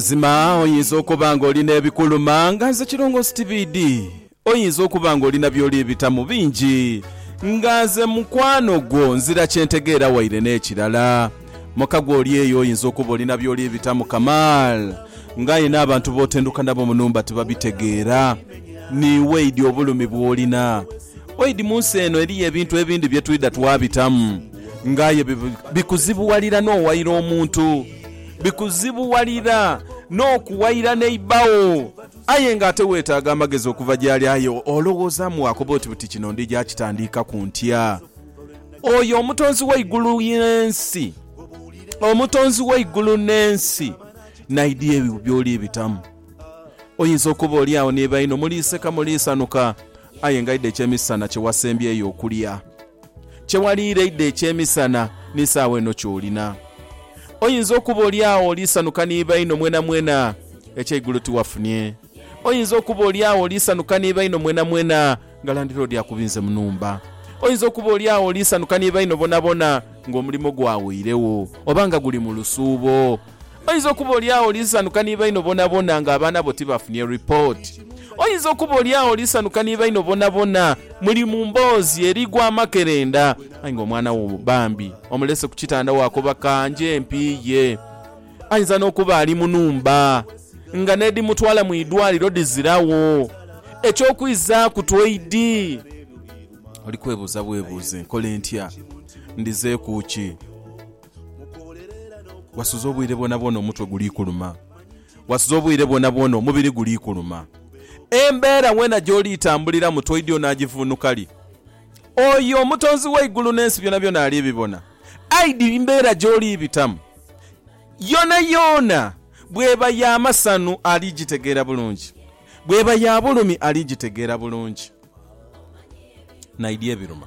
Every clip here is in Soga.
Mazima oyinza okuba ng'oli n'ebikuluma nga nze Kirongoosi Tibiidi. Oyinza okuba ng'oli na by'oli bitamu bingi nga nze mukwano gwo nzira kye ntegeera waire n'ekirala muka gwe oli eyo oyinza okuba oli na by'oli bitamu kamaal nga aye n'abantu b'otenduka nabo mu nhumba tibabitegeera niiwe idi obulumi bw'olina oidi mu nsi eno eriyo ebintu ebindi bye twidha twabitamu nga aye bikuzibuwalira n'owaire omuntu Bikuzibuwalira n'okuwaira neighbour wo aye nga ate weetaaga amagezi okuva gy'ali aye olowoozaamu waakoba oti buti kino ndija kitandiikaku ntya? Oyo Omutonzi w'eigulu n'ensi, Omutonzi w'eigulu n'ensi n'aidha ebyo by'oli bitamu. Oyinza okuba oli agho ni baino muliiseka muliisanhuka aye nga aidha ekyemisana kye wasembyeyo okulya. Kye waliireide eky'emisana ni saagho eno ky'olina. Oyinza okuba olyagho oli sanhuka ni baino mwenamwena eky'eigulo tiwafunie. Oyinza okuba olyagho oli sanhuka ni baino mwenamwena nga landiloodi akubinze mu nhumba. Oyinza okuba olyagho oli sanhuka ni baino bonabona ng'omulimo gwawoiregho oba nga guli mu lusuubo. Oyinza okuba oli agho oli nsanuka ni baino bonabona nga abaana bo tibafunye ripooti. Oyinza okuba oli agho oli nsanuka ni baino bonabona muli mu mboozi erigwa amakerenda, aye nga omwana wo bambi omulese ku kitanda waakoba ka nje mpiiye. Ayinza n'okuba ali mu nhumba nga n'edhimutwala mu idwaliro dhiziragho. Eky'okwizaaku tweidi, oli kwebuuza bwebuuze, Nkole ntya? Ndhizeeku ki? Wasuze obwire bwonabwona omutwe guli kuluma. Wasuze obwire bwonabwona omubiri guli kuluma. Embeera weena gy'oli itambuliramu toidhi onaagivvuunuka li? Oyo Omutonzi w'eigulu n'ensi byonabyona ali bibona. Aye di mbeera gy'oli bitamu yoonayoona, bw'eba ya masanhu ali gitegeera bulungi, bw'eba ya bulumi ali gitegeera bulungi. Naye di ebiruma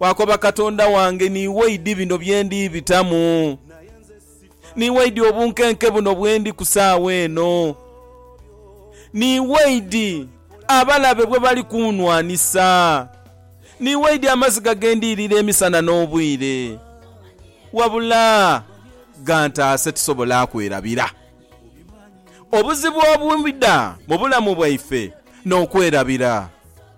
Waakoba Katonda wange, niiwe oidhi bino bye ndi bitamu. Niiwe oidhi obunkenke buno bwe ndi ku saagha eno. Niiwe oidhi abalabe bwe bali kuunwanisa. Niiwe oidhi amaziga ge ndi irira emisana n'obwire. Wabula gantaase tusobole akwerabira. Obuzibu obubida mu bulamu bwaife n'okwerabira.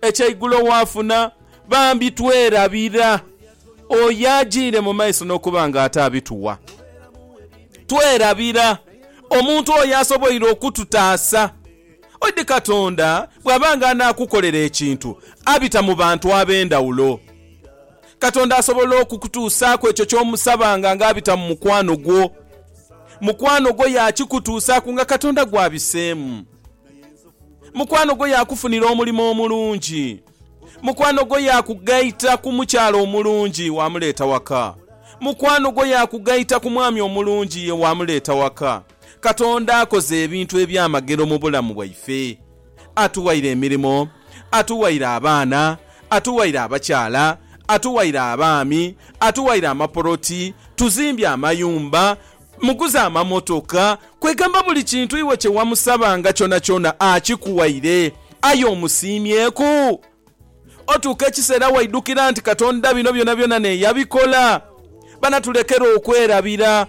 Eky'eigulo waafuna, bambi twerabira oyo ajiire mu maiso n'okuba nga ate abituwa. Twerabira omuntu oyo asoboire okututaasa. Oidhi Katonda bw'aba nga anaakukolera ekintu, abita mu bantu ab'endhawulo. Katonda asobola okukutuusaaku ekyo ky'omusabanga nga abita mu mukwano gwo. Mukwano gwo yaakikutuusaaku nga Katonda gw'abiseemu. Mukwano gwo yaakufunira omulimo omulungi. Mukwano gwo yaakugaita ku mukyala omulungi waamuleeta waka. Mukwano gwo yaakugaita ku mwami omulungi ye waamuleeta waka. Katonda akoze ebintu eby'amagero mu bulamu bwaife. Atuwaire emirimo, atuwaire abaana, atuwaire abakyala, atuwaire abaami, atuwaire amapoloti, tuzimbye amayumba, Muguze amamotoka, kwegamba buli kintu iwe kye wamusabanga kyonakyona akikuwaire. Aye omusiimyeku? Otuuka ekiseera waidhukira nti Katonda bino byonabyona naye yabikola? Bana tulekere okwerabira.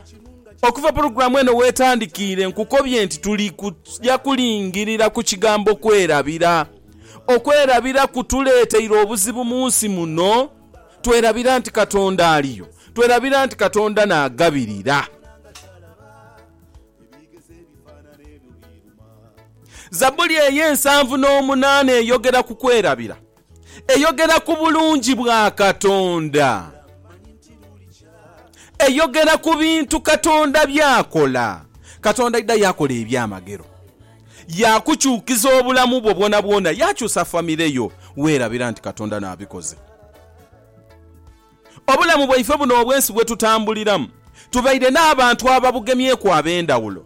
Okuva pulogulaamu eno w'etandikiire nkukobye nti tuli kuja kulingirira ku kigambo kwerabira. Okwerabira kutuleeteire obuzibu mu nsi muno. twerabira nti Katonda aliyo, twerabira nti Katonda naagabirira. Zabuli ey'ensanvu n'omunaana eyogera ku kwerabira. Eyogera ku bulungi bwa Katonda. Eyogera ku bintu Katonda by'akola. Katonda aidha yaakola ebyamagero. Yaakukyukiza obulamu bwo bwonabwona. Yaakyusa famire yo. Weerabira nti Katonda n'abikoze. Obulamu bwaife buno obw'ensi bwe tutambuliramu, tubaire n'abantu ababugemyeku ab'endhawulo.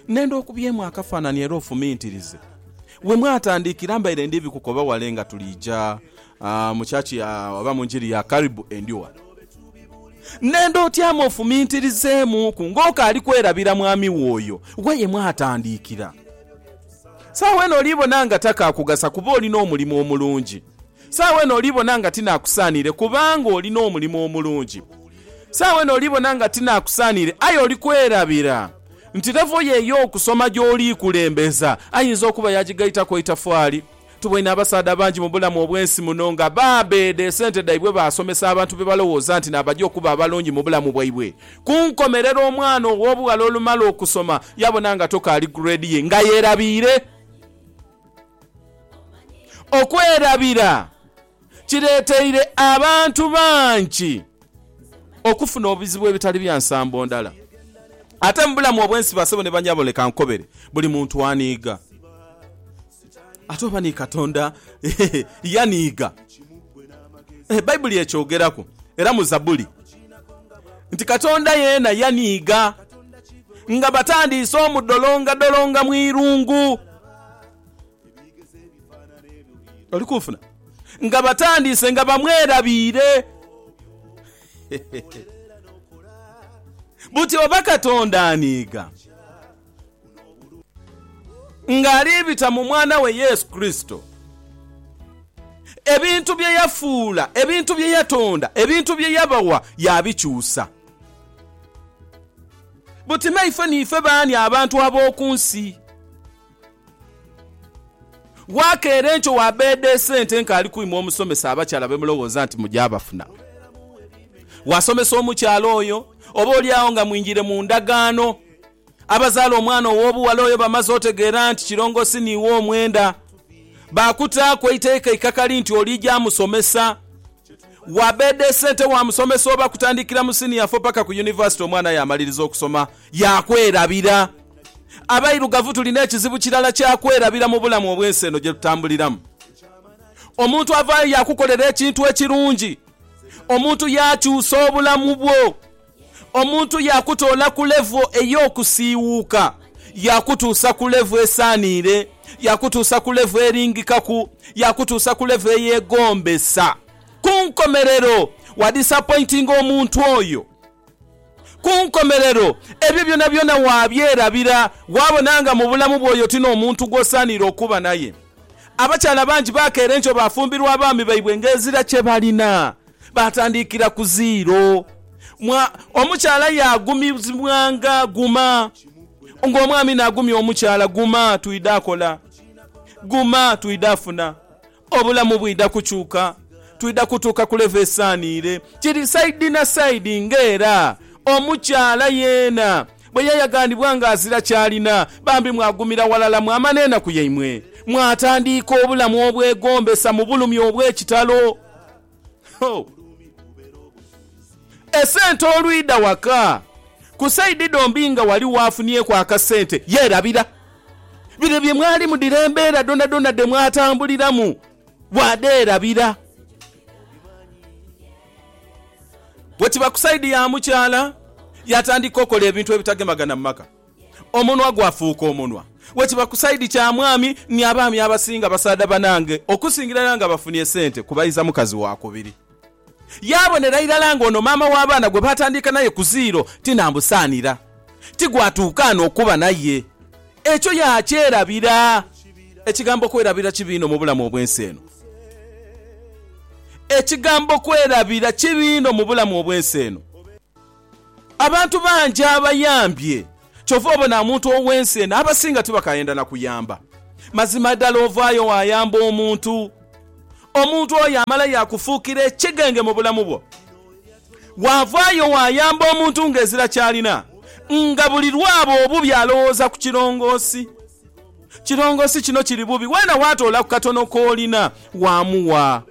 Nenda okubyemu akafaanani era ofumintirize. We mwatandiikira mbaire ndi bikukoba wale nga tuliija Mu church ya oba mu njiri ya Karibu Endhuwa. Nenda otyame ofumintirizeemuuku ng'okaali kwerabira Mwami wo oyo ghe ye mwatandiikira. Saagho eno oli bona nga takaakugasa kuba oli n'omulimu omulungi. Saagho eno oli bona nga tinaakusaaniire kubanga oli n'omulimu omulungi. Saagho eno oli bona nga tinaakusaaniire aye oli kwerabira nti levo yo ey'okusoma gy'oli kulembeza ayinza okuba yagigaitaku eitafaali Tuboine abasaadha bangi mu bulamu obw'ensi muno nga baabeeda esente dhaibwe baasomesa abantu be balowooza nti naabaja okuba abalungi mu bulamu bwaibwe. Ku nkomerero, omwana ow'obughala olumala okusoma yaabona nga toka ali grade ye nga yeerabiire. Okwerabira kireeteire abantu bangi okufuna obuzibu ebitali bya nsambo ndala. Ate mu bulamu obw'ensi basebo ne banyabo leka nkobere, buli muntu aniiga. Ate oba ni Katonda yaniiga? E Baibuli ekyogeraku era mu Zabuli nti Katonda yeena yaniiga nga batandiise omudolongadolonga mu irungu. Oli kunfuna? Nga batandiise nga bamwerabiire. Buti oba Katonda aniiga ng'ali bita mu Mwana we Yesu Kurisito, ebintu bye yafuula, ebintu bye yatonda, ebintu bye yabawa yaabikyusa? Buti naife niife baani abantu ab'oku nsi? Waakeera enkyo waabeeda esente nk'ali kwima omusomesa abakyala be mulowooza nti muja bafuna. Waasomesa omukyala oyo, oboolyawo nga mwingiire mu ndagaano. Abazaala omwana ow'obughala oyo bamaze otegeera nti kirongoosi n'iwe omwenda. Baakutaaku eiteeka eikakali nti oliija musomesa. Wabede sente wa musomesa oba kutandikira mu senior four paka ku University omwana yamaliriza okusoma yakwerabira. Abairugavu tulina ekizibu kirala kya kwerabira mu bulamu obwensi eno gyetutambuliramu. Omuntu avayo yakukolera ekintu ekirungi, omuntu yakyusa obulamu bwo Omuntu yaakutoola ku levo ey'okusiiwuuka yaakutuusa ku levo esaaniire, yaakutuusa ku levo eringikaku, yaakutuusa ku levo eyeegombesa. Ku nkomerero, waadisapointinga omuntu oyo. Ku nkomerero, ebyo byonabyona waabyerabira, waabona nga mu bulamu bwo oyo ti n'omuntu gw'osaaniire okuba naye. Abakyala bangi baakeera enkyo baafumbirwa abaami baibwe ng'ezira kye balina. Baatandikira ku ziiro. Mwa, omukyala yaagumizibwanga, Guma. Nga omwami naagumya omukyala, Guma, twidha akola. Guma, twidha afuna. Obulamu bwidha kukyuka. Twidha kutuuka ku levo esaaniire. Kiri saidi na saidi nga era omukyala yeena bwe yayagaanibwa nga azira ky'alina. Bambi mwagumira ghalala mwama n'enaku yaimwe. Mwatandiika obulamu obwegombesa mu bulumi obw'ekitalo. Esente olwidha waka, ku saidi dhombi nga ghaligho afunyeku akasente yeerabira. Bire bye mwalimu dhire embeera dhonadhona dhe mwatambuliramu bwadheerabira. Bwe kiba ku saidi ya mukyala, yaatandika okola ebintu ebitagemagana mu maka. Omunwa gwafuuka omunwa wekiba ku side kya mwami ni abaami abasinga basaadha banange okusingira irala nga bafunie sente kubaiza mukazi wakubiri yabonera irala nga ono maama wa baana gwe batandiika naye ku zero tinambusaanira ti gwatuuka ano okuba naye ekyo yakyerabira ekigambo kwerabira kibi inho mubulamu obwensi eno ekigambo kwerabira kibi inho mubulamu obwensi eno. Abantu bangi abayambye kyova obona omuntu ow'ensi eno abasinga tibakayenda na kuyamba. Mazima dala ovaayo waayamba omuntu, omuntu oyo amala yaakufuukira ekigenge mu bulamu bwo. Waavaayo waayamba omuntu ng'ezira ky'alina, nga buli lw'aba obubi alowooza ku kirongoosi. Kirongoosi kino kiri bubi, weena waatoola ku katono k'olina waamuwa,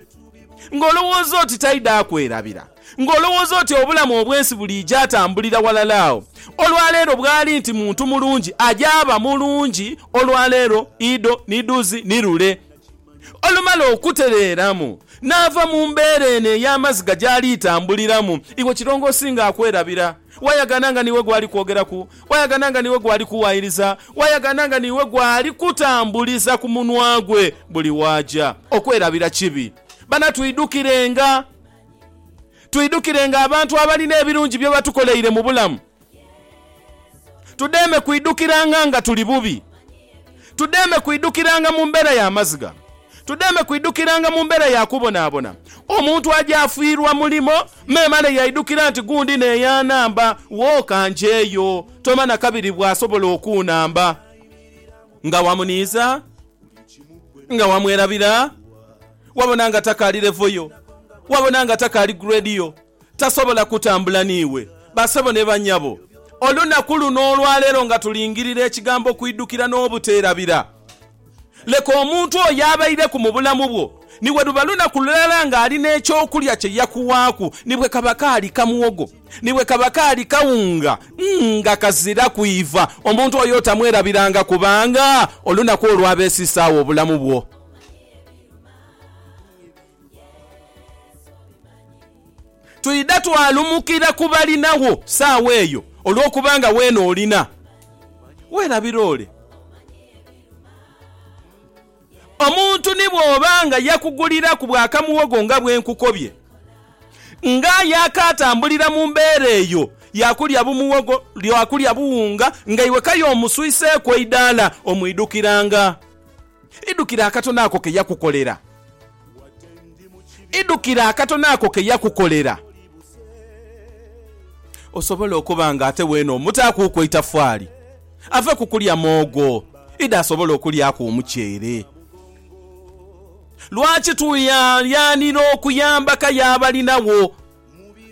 ng'olowooza oti taidha kwerabira. Ng'olowooza oti obulamu obw'ensi buliija atambulira walala agho olwaleero bwali nti muntu mulungi ajaaba mulungi olwaleero idho ni dhuuzi ni lule. Olumala okutereeramu naava mu mbeera eno ey'amaziga gyali itambuliramu, iwe kirongoosi nga akwerabira. Wayagana nga niiwe gwali kwogeraku, wayagana nga niiwe gwali kuwaayiriza, wayagana nga niiwe gwali kutambuliza ku munwa gwe buli waaja. Okwerabira kibi. Bana twidhukirenga. Twidukirenga abantu abalina ebirungi bye batukoleire mu bulamu. Tudheeme kwidukiranga nga tuli bubi. Tudheeme kwidukiranga mu mbeera ya maziga. Tudheeme kwidukiranga mu mbeera ya kubonaabona. Omuntu aja afiirwa mulimo, memale yaidukira nti, Gundi n'eyanhamba, wooka njeeyo. Toma na kabiri bw'asobola okuunhamba. Nga wamuniiza? Nga wamwerabira? Wabona nga takaali levo yo. Wabona nga takaali grade yo. Tasobola kutambula n'iwe. Basebo ni banyabo, olunaku luno olwaleero nga tulingirira Ekigambo kwidhukira n'obuteerabira. Leka omuntu oyo abaireku mu bulamu bwo, ni bwe luba lunaku lulala ng'ali n'ekyokulya kye yakuwaaku, ni bwe kaba kaali ka muwogo, ni bwe kaba kaali kawunga nga kaziraku iva, omuntu oyo otamwerabiranga kubanga olunaku olwo aba esiise agho obulamu bwo. Twidha twalumukira ku balinagho sawa eyo olwokuba nga weena olina werabira ole. Omuntu ni bw'oba nga yakuguliraku bwa kamuwogo nga bwe nkukobye, nga yaakaatambulira mu mbeera eyo ya kulya bumuwogo, ya kulya buwunga nga iwe k'aye omuswiseeku eidaala omwidhukiranga. Idhukira akatono ako ke yakukolera. Idhukira akatono ako ke yakukolera. Osobole okuba nga ate weene omutaakuuku eitafaali, ave ku kulya moogho idho asobole okulyaku omuceere. Lwaki tweyalyanira okuyamba ka y'abalinagho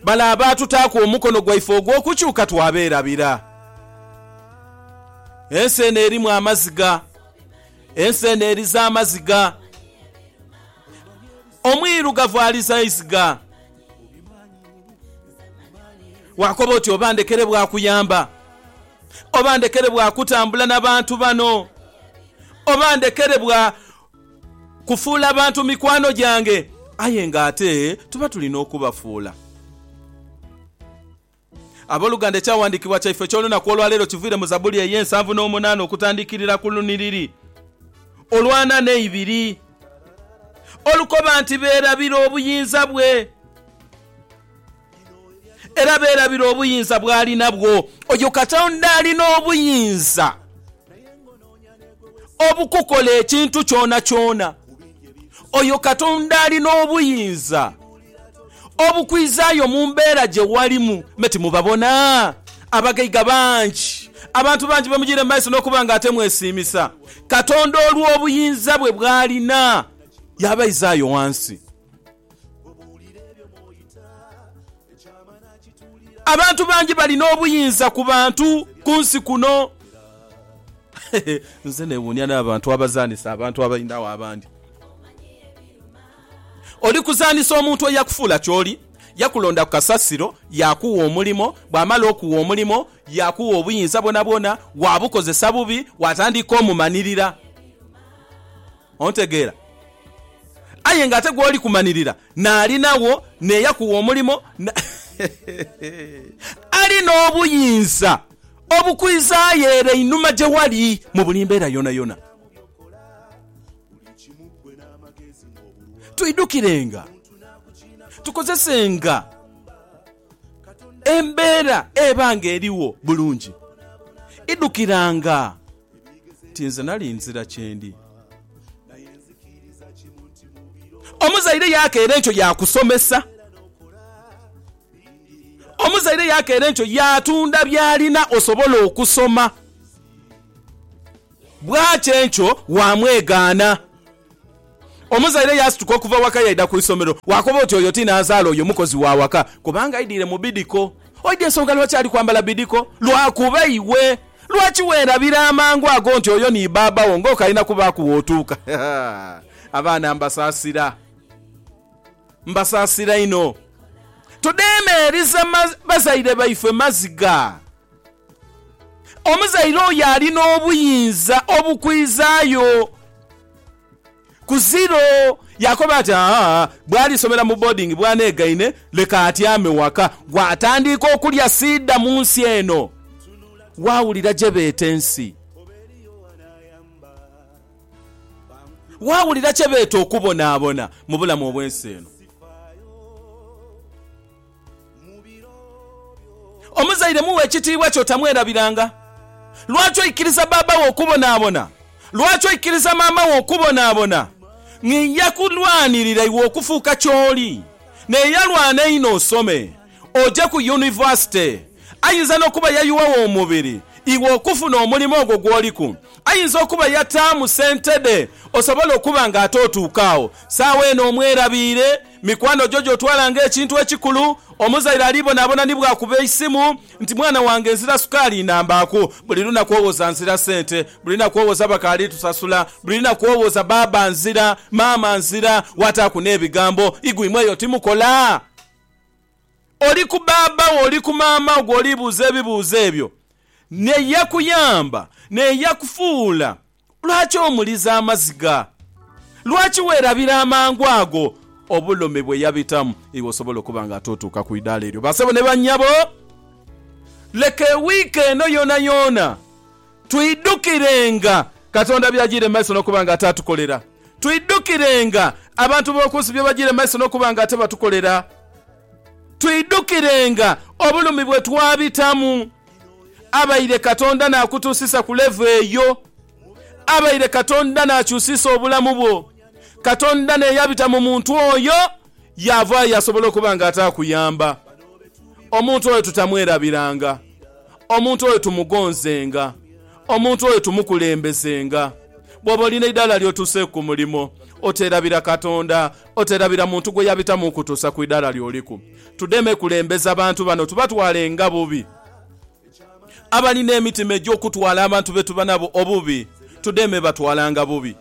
bale abaatutaaku omukono gwaife ogw'okukyuka twabeerabira? Ensi eno erimu amaziga Ensi eno eriza amaziga. Omwirugavu aliza iziga. Waakoba oti, Oba ndekere bwa kuyamba. Oba ndekere bwa kutambula na bantu bano. Oba ndekere bwa kufuula abantu mikwano gyange. Aye ng'ate tuba tulina okubafuula. Aboluganda, ekyawandiikibwa kyaife eky'olunaku olwaleero kiviire mu Zabuli ey'ensanvu n'omunaana okutandikirira ku lunhiriri olw'ana n'eibiri, olukoba nti, Beerabira obuyinza bwe, era beerabira obuyinza bw'ali nabwo. Oyo Katonda ali n'obuyinza obukukola ekintu kyonakyona. Oyo Katonda ali n'obuyinza. obukwizaayo mu mbeera gye walimu. Me timubabona? Abagaiga bangi, abantu bangi bemujiire mu maiso n'okuba nga ate mwesiimisa. Katonda olw'obuyinza bwe bw'alina, yaabaizaayo ghansi. Abantu bangi balina obuyinza ku bantu ku nsi kuno. Nze neewuunia n'abantu abazaanisa abantu abainhagho abandi. Oli kuzaanhisa omuntu eyakufuula ky'oli? Yakulonda ku kasasiro, yaakugha omulimo. Bw'amala okugha omulimo, yaakugha obuyinza bwonabwona. Waabukozesa bubi, waatandika omumanirira. Ontegeera? Aye nga ate gw'oli kumanirira naali nawo, n'eyakugha omulimo, ali n'obuyinza obukwizaayo ere einhuma gye wali mu buli mbeera yoonayona. Twidhukirenga, tukozesenga embeera eba ng'erigho bulungi. Idhukiranga nti nze nali nzira kyendi. Omuzaire yaakeera enkyo yaakusomesa. Omuzaire yaakeera enkyo yaatunda by'alina osobole okusoma. Bw'ati enkyo waamwegaana. Omuzaire yaasituka okuva waka yaidha ku isomero. Waakoba oti, Oyo ti nanzaala, oyo mukozi wa waka. Kubanga aidhire mu bidiko. Oidha ensonga lwaki ali kwambala bidiko? Lwakuba iwe. Lwaki weerabira amangu ago nti oyo ni baaba wo ng'okalina kubaaku w'otuuka? Abaana mbasaasira. Mbasaasira inho. Tudheemeeriza bazaire baife maziga. Omuzaire oyo ali n'obuyinza obukwizaayo ku ziro. Yaakoba ati, Aa, bw'alisomera mu boodingi bw'aneegaine, leka atyame waka. Bw'atandiika okulya siidha mu nsi eno, waawulira gye beeta ensi. Waawulira kye beeta okubonaabona mu bulamu obw'ensi eno. Omuzaire mughe ekitiibwa kyo, tamwerabiranga. Lwaki oikiriza baaba wo okubonaabona? Lwaki oikiriza maama wo okubonaabona? Nja kulwanirira iwe okufuuka ky'oli. Naye yalwana inho osome oje ku yunivasite. Ayinza n'okuba yayuwagho omubiri iwe okufuna omulimu ogwo gw'oliku. Ayinza okuba yataamu sente dhe osobole okuba ng'ate otuuka agho. Saagho eno omwerabiire. Mikwano gyo gy'otwala ng'ekintu ekikulu. Omuzaire alibonaabona ni bw'akuba eisimu nti mwana wange nzira sukaali inhambaaku. Buli lunaku owoza nzira sente. Buli lunaku owoza bakaali tusasula. Buli lunaku owoza baaba nzira, maama nzira, waataaku n'ebigambo, Igwe imwe eyo timukola? Oli ku baaba wo, oli ku maama wo gw'olibuuza ebibuuzo ebyo n'eyakuyamba n'eyakufuula Lwaki omuliza amaziga? Lwaki weerabira amangu ago obulumi bwe yabitamu? Iwe osobola okuba nga tootuuka ku idaala eryo. Bassebo ni bannyabo, leka ewiiki eno yoonayoona twidhukirenga Katonda by'ajiire mu maiso n'okuba nga ate atukolera. Twidhukirenga abantu b'oku nsi bye bajiire mu maiso n'okuba nga ate batukolera. Twidhukirenga obulumi bwe twabitamu. abaire Katonda naakutuusisa ku levo eyo. Abaire Katonda naakyusiisa obulamu bwo. Katonda n'eyabita mu muntu oyo yaavaayo yasobola okuba nga ataakuyamba. Omuntu oyo tutamwerabiranga. Omuntu oyo tumugonzenga. Omuntu oyo tumukulembezenga. Bw'oba olina eidaala ly'otuuseeku ku mulimo, oteerabira Katonda, oteerabira muntu gwe yabitamu okukutuusa ku idaala ly'oliku. Tudeme kulembeza bantu bano tubatwale nga bubi. Abalina emitima egy'okutwala abantu be tuba nabo obubi, tudeme batwala nga bubi.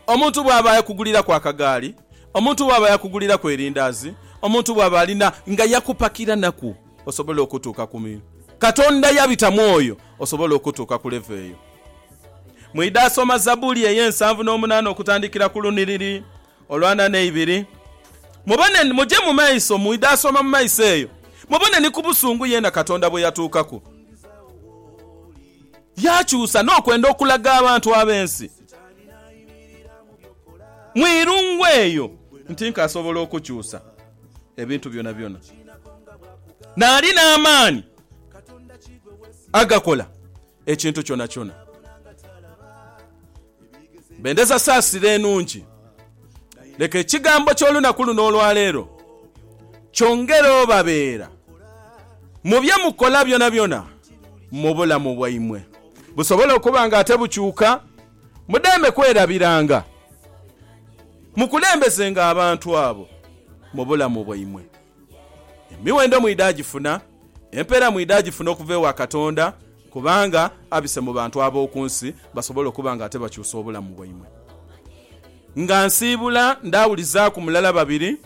Omuntu bw'aba yakuguliraku akagaali, omuntu bw'aba yakuguliraku erindaazi, omuntu bw'aba alina nga yakupakiranaku osobole okutuuka ku. Katonda yabita mu oyo osobole okutuuka ku levo eyo. Mwidha soma Zabbuli ey'ensanvu n'omunaana okutandikira ku lunhiriri Olw'ana n'eibiri. Mubone, muje mu maiso, mwidha asoma mu maiso eyo, mubone ni ku busungu yeena Katonda bwe yatuukaku, yaakyusa n'okwenda okulaga abantu ab'ensi mu irungu eyo nti nk'asobola okukyusa ebintu byonabyona, naali n'amaani agakola. ekintu kyonakyona. Bendeza saasira enungi. Leka ekigambo ky'olunaku luno olwaleero kyongere obabeera mu bye mukola byonabyona mu bulamu bwaimwe. Busobole okuba nga ate bukyuka, mudeme kwerabiranga, mukulembezenga abantu abo mu bulamu bwaimwe. Emiwendo mwidha agifuna, empeera mwidha agifuna okuva ewa Katonda, kubanga abise mu bantu ab'oku nsi basobole okuba nga ate bakyusa obulamu bwaimwe. Nga nsiibula ndaawulizaaku mulala babiri,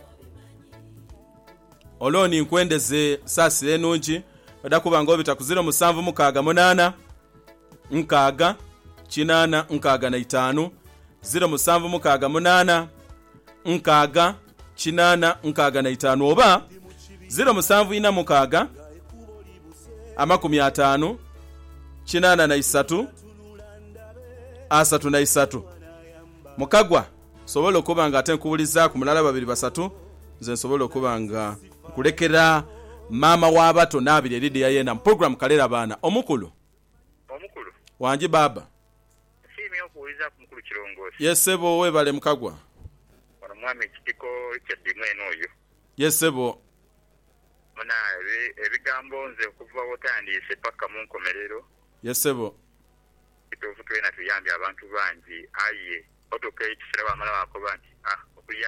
Olooni nkwendeze saasira enungi, oda kuba nga obita ku ziro musanvu mukaaga munaana. nkaaga kinaana nkaaga na itaanu, ziro musanvu mukaaga munaana nkaaga kinaana nkaaga na itaanu oba ziro musanvu ina mukaaga amakumi ataanu kinaana na isatu asatu na isatu. Mukagwa nsobola okuba nga ate nkuwulizaaku mulala babiri basatu nze nsobola okuba nga. Nkulekera maama w'abato naabire Lydia yeena mu pulogulaamu Kalerabaana Omukulu. Omukulu. Wangi baaba. Nsiimye okuwulizaaku mukulu Kirongoosi. Yes sebo webale mukagwa. Ono mwami Kitiko Richard mwene oyo. Yes sebo. Muna ebigambo nze okuva wotandiise paka munkomerero. Yes sebo. Kituufu twena tuyambye abantu bangi aye otuuka ekisera wamala wakoba nti ah okuyamba.